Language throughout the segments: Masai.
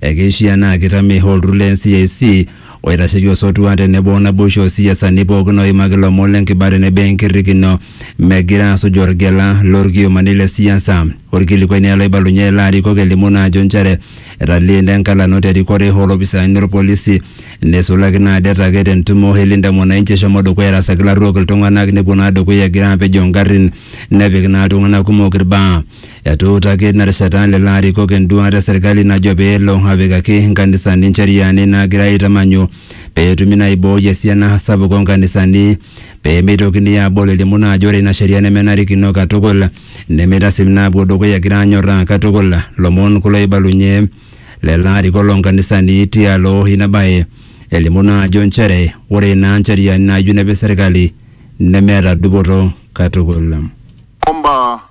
Ekeishiaa naa keitame olturur le NCIC oitasheki osotua tenebo naboisho oo siasani pooki ooimaki ilomon le nkiba tenebo enkirrikino megira aasuj olgela lo lkiomani le siasa. Olkilikuai naa oloibalunye ilarikok elimu naa ajo nchere etaleena enkalano te rikore oo lopisaani lo lpolisi neisulaki naa det ake te ntumo e Linda Mwananchi eshomo dukuya airasaki ilarruok iltung'anak nepuo naa dukuya egira aapejoo ngarrin nepik naa iltung'anak kumok ilbaa. Etuutaki ina rishata lelo arikok enduaata e serkali najo pee elo apikaki nkanisani ncheriani naagira aitamanyu pee etumi naa aibooi esiana sapuk oo nkanisani pee meitokini aabol elimu naa ajo ore ina sheria nemenarikino katukul nemeitasip naapuo dukuya egira anyorraa katukul. Lomon kulo oibalunye lelo arikok loo nkanisani tialo ina bae elimu naa ajo nchere ore naa ncheriani naayieu nepik serkali nemeeta dupoto katukul. Omba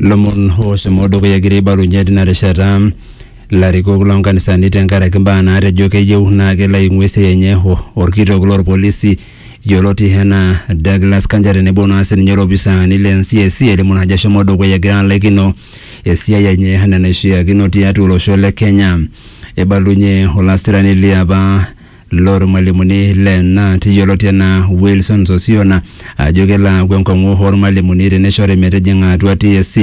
lomon oshomo dukuya egira aibalunye tina rishata larikok lonkanisani tenkaraki mbaa naatejo keyieu naa kelo aing'ua esiai enye o- orkitok lorpolisi yioloti enaa Douglas Kanja tenebo naa sininye olopisaani le NCIC elimu naa ajo eshomo dukuya egira alaikino esiai enye enaa enaishiakino tiatua olosho le Kenya. Eibalunye olasirani liapa lormalimuni le NAT yioloti anaa Wilson Sosiona ajo kelo aaku enkong'u ormalimuni teneshori metijing'a atua TSC.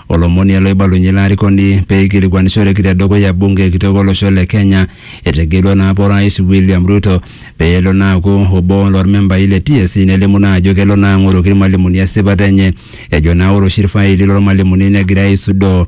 Olomoni ele oibalunye ilo arikoni pee eikilikuanishoreki te dukuya bunge kitok olosho le Kenya etegelua naa apa orais William Ruto pee elo naa aaku obo lormembai le TSC nelimu naa ajo kelo naa ang'oroki irmalimuni esipata enye ejo naa ore oshi irfaili lormalimuni negirai aisudoo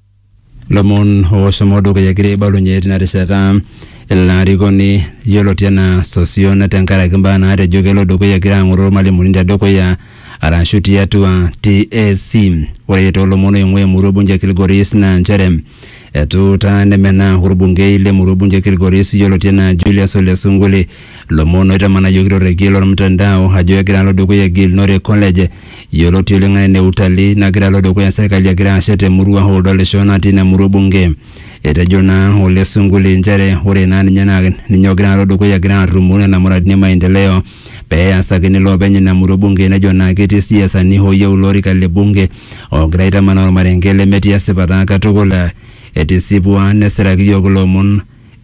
lomon oshomo dukuya egira aibalunye tina rishata ilo arikoni yioloti enaa Sosion tenkaraki mbaa naatejo kelo dukuya egira ang'oroo irmalimuni tedukuya arashu tiatua TSC. Ore toolomon oing'ua emurua ebunge e Kilgoris naa nchere etuutaa nemenaa orbungei le murua ebunge e Kilgoris yioloti enaa Julius Ole Sunkuli Lomon oitamanayioki torrekie lormtandao ajo egira alo dukuya Gilnore College yioloti oleng anaa ene Utalii nagira alo dukuya serkali egira ashet te murua oo Ldolisho natii ina murua o bunge. Etejo naa Ole Sunkuli nchere ore naa ninye naa ninye ogira alo dukuya egira arrumoo nena muradini e maendeleo pee easakini loopeny ina murua o bunge nejo naa ketii siasani ooyieu ilo orika le bunge oogira aitamanaa ormarenke lemetii esipata katukul. Etisipua nesiraki iyiook ilo omon.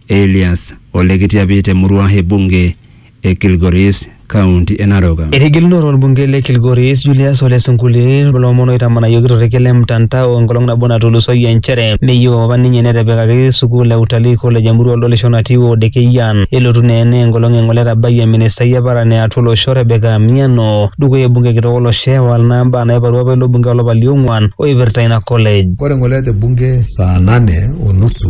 Elias Ole Kitiapi te murua e bunge e Kilgoris, kaunti e Narok. Etigilunore olbungei le Kilgoris Julius Ole Sunkuli lomon oitamanayioki torrekie le mtandao enkolong nabo natulusoyie nchere meyieu apa ninye netepikaki sukuul e utalii college emurua oldolisho natii ward e Keyian. Elotu naa ena enkolong e ngole etabayie ministai e paran e atua olosho Rebecca Amiano dukuya olbungei kitok olosho ewal naa mbaa naiparua apa ilo bungei olapa liong'uan oipirta ina college. Ore ngole te bunge saa nane o nusu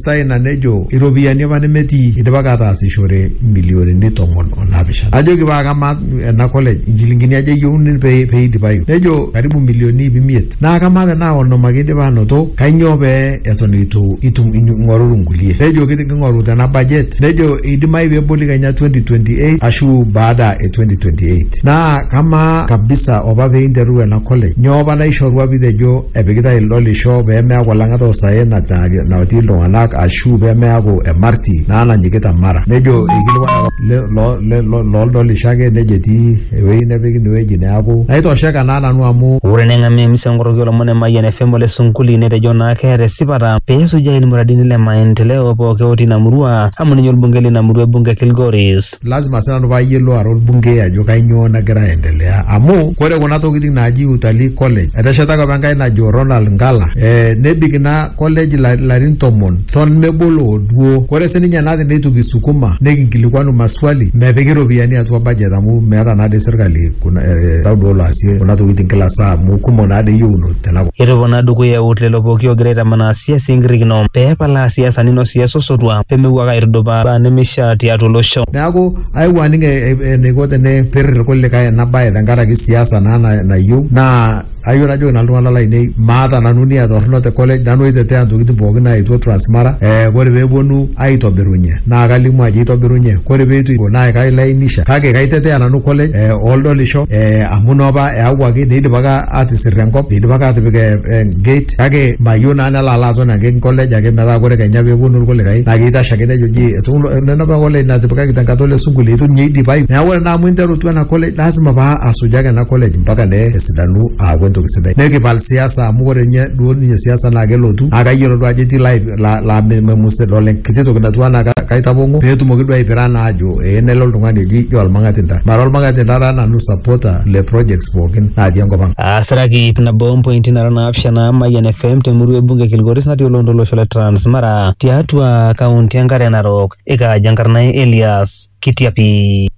Eipirta ina nejo iropiyiani apa nemetii eidipaki ataasishore mbilionini tomon o naapishana. Najoki paa kamaa ena college inchilingini aja eyieuni pee pee eidipayu? Nejo karibu milioni iip imiet. Naa kamaa tenaa onom ake eidipa aanoto kainyoo pee eton eitu itum ing'oruru nkulie? Nejo king'oru tena budget. Nejo eidimayu pee eboli kenya 2028 ashu baada e 2028. Naa kamaa kabisa opa pee interuru ena college nyoo opa naishorua pee itejo epikitae ildolisho pee meaku olang'ata osaen na- na- natii iltung'anak ashu pee meaku emarti naa nanyikita mara nejo eikilikuanaka le- lo- le- lo- loldolisho ake nejo etii ewueji nepiki inewueji neaku naitosheka naa nanu amu Ore neng'amu emisa enkoroki olomon e Mayian FM ole Sunkuli netejo naa keeta esipata pee esujaa ilmuradini le maendeleo pooki otii ina murua amu ninye olbungei lina murua e bunge e Kilgoris. lazima sii nanu paayiolou ara olbungei ajo kainyoo nagira aendelea amu kore kuna tokitin naaji utalii college eteshetaki apa enkai najo Ronald Ngala e, nebik ina college la- larin tomon ton mebolo oduo kore sininye nati neitu kisukuma nikinkilikuanu maswali mepiki iropiyiani atua budget amu meeta naade sirkali kuna e, tau duo laasie kuna tokitin kila saa amu kumok naade yieuno tenakop Etopona dukuya eut lelo pooki oogira aitamanaa siasa enkirrikino pee epalaa siasani noo siasa osotua. pee mepuo ake aitudupaa imbaa nemeishaa tiatua olosho. Neaku aewuo aning eneiko tenepir ilkulikae ena bae tenkaraki siasa naa nayieu naa ayieu najoki nanu iltung'ana lainei maata nanu nia torrono te college nanu oitetea intokitin pookin naaetuo Transmara eh ore peepuonu aitobirunye naa kalimu ajo eitobirunye ore peitu eiko naa kailainisha kake kaitetea nanu college eh oldolisho eh amu inopa eyawuaki neidipaki atisirr enkop eidipaki atipik eh gate kake mayieu naa nelo alo aton ake college ake metaa kore kenya peponu irkulikae naa keitashe ake nejoji etu nena apa college natipikaki tenkata ole sunkul eitu ninye eidipayu neeku ore naa amu interutua ena college lazima paa asujaa ake ena college mpaka ne esidanu aaku entoki sidai nikipal siasa amu ore ninye duo ninye siasa naa kelotu naa kayiolo duo ajo etii lai la- la- me- memus idol enkiti toki natiu anaa ka- kaitapong'o peetumoki duo aipira naa ajo ee nelo oltung'ani eji jo olmang'atinta mara olmang'atinta taa nanu supporter le projects pookin natii enkop ang. Asiraki ip nabo ompointi nara naapishana Mayian FM temurua ebunge e Kilgoris natii oloontoluo lolosho le Transmara tiatua kaunti enkare Narok ikaaja enkarna ai Elias Kitiapi.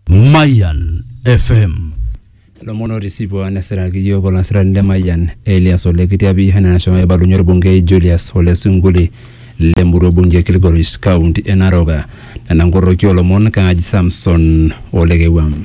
Mayan FM. Lomon otisipua nesiraki iyiook olasirani le Mayian Elias Ole Kitiapi enaa nashomo aibalunye orbungei Julius Ole Sunkuli le murua bunge e Kilgoris kaunti e Narok. Nena nkoroki oolomon kaaji Samson Ole Kewuam.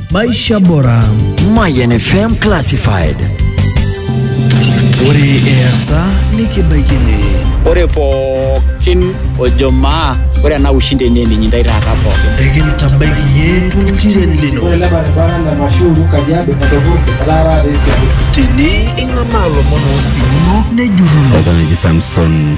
Maisha Bora. Mayan FM Classified. Ore easa nikibaikini. Ore pookin ojo maa ore ena ushindi enye ninyi ndai taata pookin. Ekintabaiki yie tuntiren lino. Ore ele barabara na Mashuru Kajiado Matovuti Lara Resi. Tini ing'amaa lomon oosimuno nejurruno. Eton eji Samson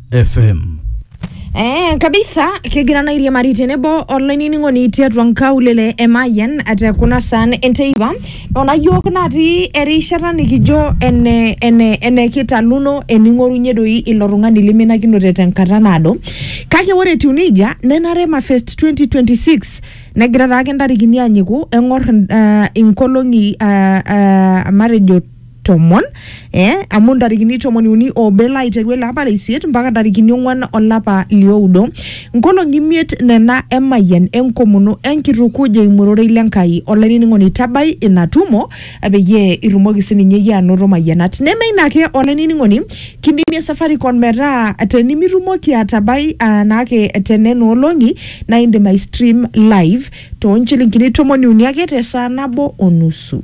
FM. Eh, kabisa kigira na iriamari tenebo olainining'oni tiatua nkaulele e Mayian te kuna saan enteipa nona yiok natii erishata nikijo ene, ene, ene kitaluno ening'orunye doi ilo tung'ani liminakinote tenkata naado kake ore etiu nejia nenare mafest 2026 negira taake ntarikini anyiku eng'or uh, inkolong'i uh, uh, matejo tomon eh, amu ntarikini tomoni uni obe laiteru ele apa leisiet mpaka ntarikini ong'uan olapa lioudo nkolong'i imiet nena emayian enkomono enkitukuj eimu ororei le Nkai olainining'oni tabai ina tumo eh, peyie itumoki sininye iyie anoto mayianat neme ina ake olainining'oni kidimie Safaricom metaa tenimitumoki atabai ah, naake tenena olong'i naa indim ai stream live toonchilingini tomoni uni ake tesaa nabo onusu.